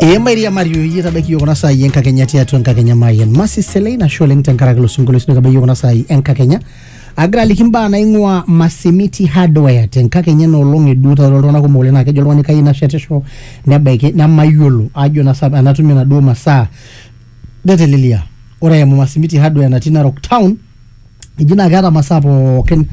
ee mairiamari oyie tabaiki yiok kuna saai enkakenya tiatua enkakenya mayen masi selei nasho oleng tenkaraki ilo sinkolio sino tabaiki yiok kuna saai enkakenya agira aliki mbaa naing'ua masimiti hardware tenkakenya ena olong eduo taata iltung'anak kumok oleng naa kejo oltung'ani kayieu nashetisho nebaiki nemayiolo ajo nasa enatumie naduo masaa Netelelia. Ore eimu Masimiti Hardware natii Narok Town, eji naa keeta masaa pookin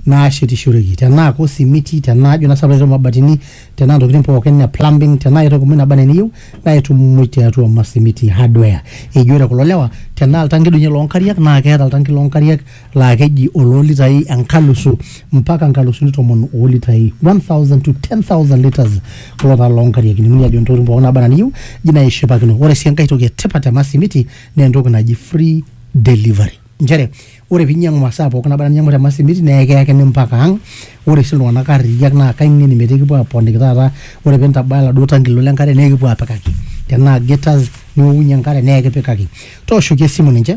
naashetishoreki. Tenaa ko simiti, tenaa ajo naa sii pae mabatini, tenaa ntokitin pookin e plumbing, tenaa aitoki muj naba enaa eniyieu naa itum muj tiatua Masimiti Hardware. Eji ore kulo lewa tenaa oltanki doi ninye loonkariak naa keeta oltanki loonkariak laa keji oloo litai enkalusu mpaka nkalusuni tomon oo litai 1000 to 10000 liters kulo taa loo nkariak ining'uni ajo ntokitin pookin naaba anaa niyieu ji naa ishipakino ore sii enkae toki etipat te masimiti naa entoki naji free delivery nchere ore piinyiang'u masaa pookin naba anaa ninyiang'u te masimiti naa ekiyakini mpaka ang ore sii iltung'anak arriyiak naa kaing'eni metaa ekipuo aponiki taata ore pintabaya oladuo tanki lino lenkare naa ekipuo apikaki tenaa gators niokunyie enkare naa ekipikaki tooshoki esimu ninche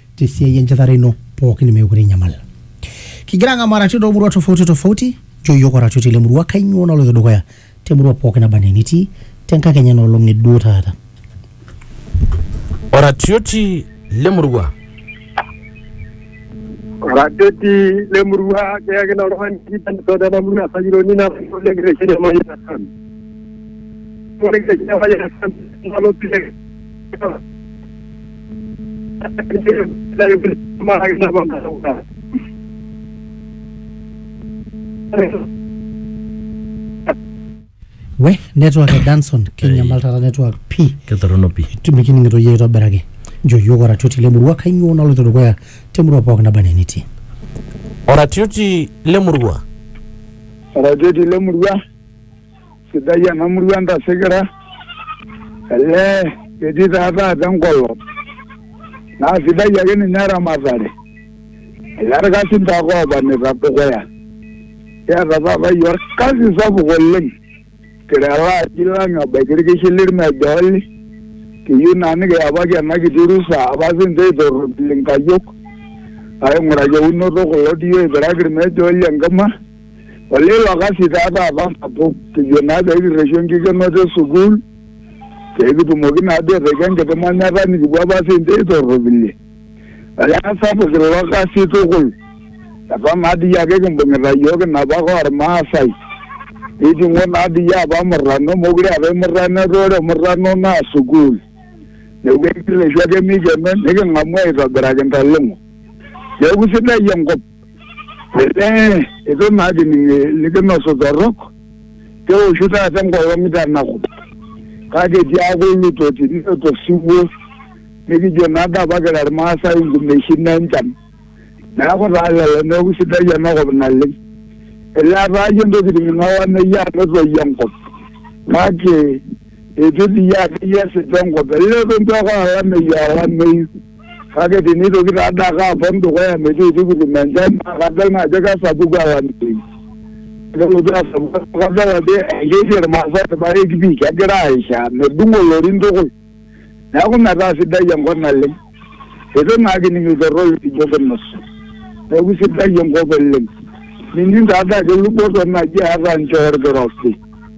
te siai enchetare ino pookin meekure inyamal. Kigira ang'amu arati toomurua tofauti tofauti, nchoo iyiook oratioti lemurua kainyoo naloito dukuya temurua pooki naba anaa enitii tenkakenya ena olong e duo taata. Oratioti lemurua. Oratioti lemurua keyaki naa oltung'ani kitanito tena murua Sayioni natayiolo oleng kitesheni Emayian FM. Ore kitesheni Emayian FM nalo pii we network e danson kinyamal taata network pii ketorrono pii mikining'ito yie aitobiraki njo yiok oratioti lemurua kainyoo naloito dukuya temurua pooki naba enaa enitii oratioti lemurua oratioti lemurua sidai ena murua entasikira elee etii taa taata enkolong naa sidai ake ninye eramatare elee irkasin taake oobanita dukuya kiata taata iyie orkasi sapuk oleng kira ele aji lang ebaiki irkishi lirmejooli kiyieu naa nikiyapaki ena kiti rusa apa sinche eitorropil inkayiok aing'uraki eunoto kulo diyio oipiraki irmejooli enkima olelo kasi taa taata sapuk kijo naa peekirreshu enkikenoto e sukuul peekitumoki naa duo aitaki enkiti manyata nikipuo apa siinche aitorropilie olee sapuk ilo kasi tukul eton naa dii ake kimbung'ita iyiook inapa ake ormaasai niting'o naa dii apa murrano mokure eetae murrano etaa ore murrano naa sukuul neeku ekirreshu ake mikeno niking'amu aitobiraki intaleng'o neeku sidai enkop. Elee itu naa ajo ninye likinosu torrok keoshu taata enkolong tanaku kake tiaku ilutoti niloto osiwuo nikijo naa dii apa kira Irmaasai inkumeshin enchan neeku taa lelo neeku sidai enakop naleng elee etaa iyie intokitin olameyu amu etoyio enkop kake eitu dii iyie akeyie esip enkop elee eton itu aikata olameyu aa olameyu. Kake tinitoki taa dii ake apon dukuya metiitikutum enchan naa kadol naa ajo kesapuku olameyu. Kelotu asapuku amu kadol ajo ekesie Irmaasai irpaek pii kegira aaishaa medung'o ilorin tukul. Neeku metaa sidai enkop naleng. Eitu naa kining iltorrok likijo kinos. Neeku isidai enkop oleng. Mining taa dii ajo luboto naji eeta nchoo orkirobi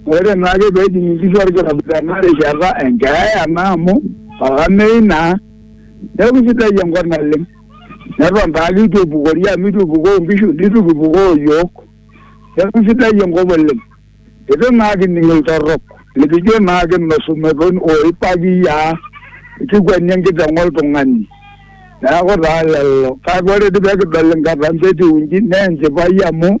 Ore naake pee ejing inkishu olkirobi tena rishata e nkeeya naa amu olameyu naa neaku eisidai enkop naleng. Neton taa ake eitu epukori amu eitu epukoo inkishu neitu kipukoo iyiook. Neaku eisidai enkop oleng. Eitu naa kining iltorrok likijo naa kinosu metoni ooi pakiyiaa kikweni enkiteng oltung'ani. Neaku taa lelo kake ore dii pee kidol inkatampo etiu inji naa enchipai amu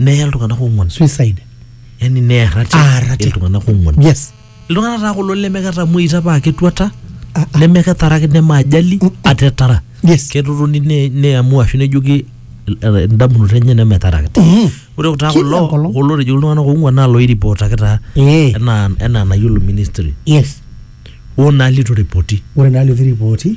neye iltung'anak ong'uan suicide yani neye rati Ah, rati. iltung'anak ong'uan yes iltung'anak taa kulo lemeketamuoita paa ketuata Ah, ah. nemeketaraki nemaajali atetara yes ketotoni ne- neamua ashu nejoki eh, indamunot enye nemetarakita Mhm. ore taa Kila kulo enkolong. kulo otejoki iltung'anak ong'uan naa loiripotaki taa Eh, enaa enaa nayiolo ministry yes oo naa litu ripoti ore naa litu ripoti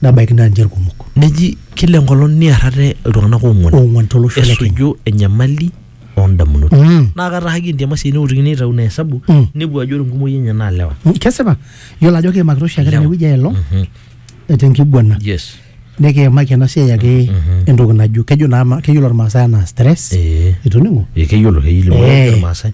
nebaiki naa ninche irkumok Neji kila enkolong niar ate iltung'anak oong'uan oong'uan tolosho le Kenya. esuju enyamali oondamunot. Mm. Naa kataahaki entiama sii neutikini aitau ina esabu Mm. nepuo ajo ore enkumoi enye naa lewa. Mm, Kesipa, iyiolo ajo kiimakita oshiake Lewa. tenewueji aelong Mhm. tenkiguana Yes. nikiimaki ena siai ake Mhm. entoki najo kejo naa ma- keyiolo Irmaasai anaa stress Eh. itoning'o Ee, keyiolo keyiolo Eh. Irmaasai.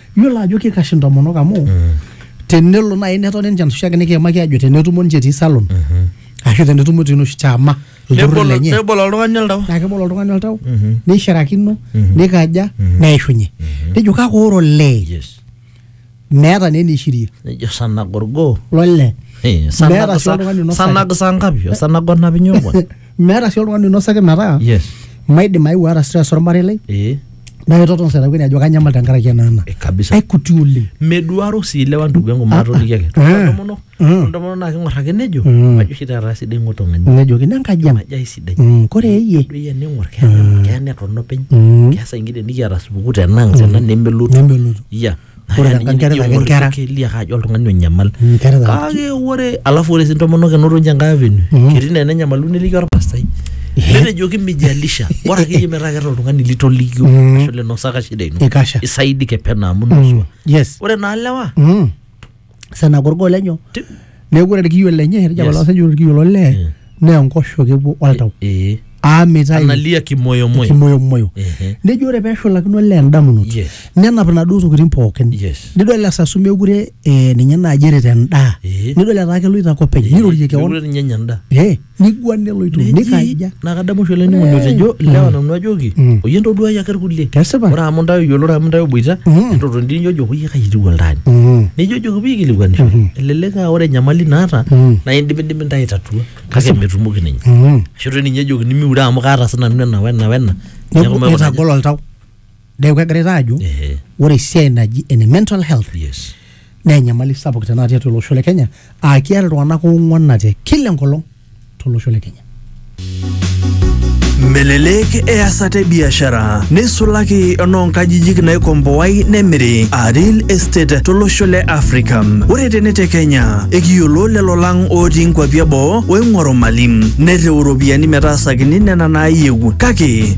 Iyiolo ajo kikash intomonok amu tenelo naaji netoni ninche enoshi ake nikiimaki ajo tenetumo ninche etii salon ashu tenetumo etii enoshi chama olturrur Nebol- lenye nebol oltung'ani oltau naa kebol oltung'ani oltau neishirakino nikaja neishunye nejo kake ore olee yes meeta naa eneishirie nejo sanagorgo lole Eh, Meeta sanag- sii oltung'ani sa- oinosaki. sanag saa ngapi osanag onap inyo obo meeta sii oltung'ani oinosaki metaa yes maidim aeu aata stress ormarei lai eh naa kitoton setakwini ajo kanyamal tenkaraki ena ena eh, kabisa aikuti oleng meduaro sii lewa ndugu yangu maatolikiaki Ah. Ore ntomonok Ah. ore ntomonok naa king'or ake nejo Mm. majo oshi taata sidai ng'otong'ani nejoki nenkaji ang majo aisidai Mm, kore eyie doi ene ng'or keya keya neton openy Mm. keasa ingida nikiata supukuu tenang tena nemelotu nemelotu ya Ore Haya, ninye tenkaraki nijo ake aing'or inkera. keliak ajo oltung'ani onyamal Inkera taa- kake ore alafu ore sii intomonok enoto ninche enkae avenue Mhm. ketii naa enenyamalu neliki orpastai netejoki mijalisha bora akeyie metaa keeta oltung'ani litolikio Mhm. ashu linosaka shida ino Ikasha. isaidike pena amu Mm. nusua Yes. ore naa lewa Mm. sena korgo lenyo Ti- neeku ore irkiyo lenye etejo Yes. apa loo saijo ore irkiyo lo lee Mm. naa enkoshoke epuo oltau Eh, aa mitayu analia kimoyomoyo kimoyomoyo Ehe. nejo ore peshulakino olee endamunoto Yes. nenap inaduo tokitin pookin Yes. nidol esasu mekure eh, ninye naaji erita endaa Eh. nidol etaa keloito ake openy nirorie keon Mekure ninye enya endaa Eh, niguan neloito Neji, nikaja naa kadamu oshi olainining'oni otejo lewa nanu ajoki Mm. oyie ntoduai ake irkulie Kesipa. ore amu ntae oyioloro amu ntae oboita Mm. entotoni dii nijojo oyie kai etiu oltaani Mm. nijojoki pee ikilikuanisho Mhm. elelek aa ore enyamali naata Mm. naa indimidimi ntae aitatua kake Kasipa. metumoki ninye Mm. ashu toi ninye ejokini miure amu kaata sinanu ena wena wena Neeku Neeku maikuna aja. itagol oltau neeku kegira taa ajo Ehe. ore esiai naji ene mental health yes naa enyamali sapuk tenakata tiatua olosho le kenya aa kiata iltung'anak oong'uanate kila enkolong tolosho le kenya Melelek easata e biashara neisulaki enoonkajijik naikomboai nemiri aa real estate tolosho le Afrika. Ore tene te Kenya, ekiyiolo lelo lang ootii nkwapi eboo oing'oru mali nerriu iropiyiani metaasakini nena naayieu kake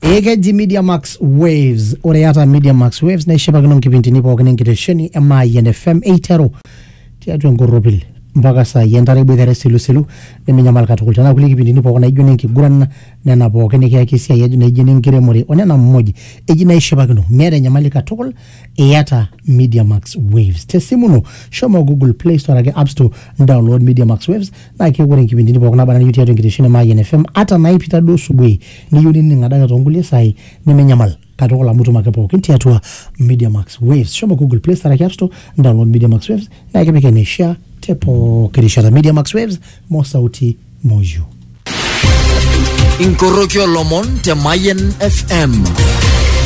ekeji media max waves ore iyata media max waves naishipakino nkipindini pookin enkitesheni e maayian fm eiteru tiatua enkorropil mpaka saai entare iboitare esilisilu neminyamal katukul tenaa kulie kipindini pookin naijo nenkiguran nena pookin nikiyaki esiai aj- naijo nenkiremore onena muj eji naishipakino miata enyamali katukul iyata media max waves tesimu ino shomo google play store ake app store download media max waves naa keeku ore nkipindini pookin naba nayieu tiatua enkitesheni e maayian fm ata naipita duo subuhi niyieu nining adake toonkulie saai neminyamal katukul amu itum ake pookin tiatua Media Max Waves. Shomo Google Play Store araki App Store, download Media Max Waves naa ekipik eneishaa te pooki rishata. Media Max Waves, mo sauti mo you. inkoroki olomon te Mayen FM.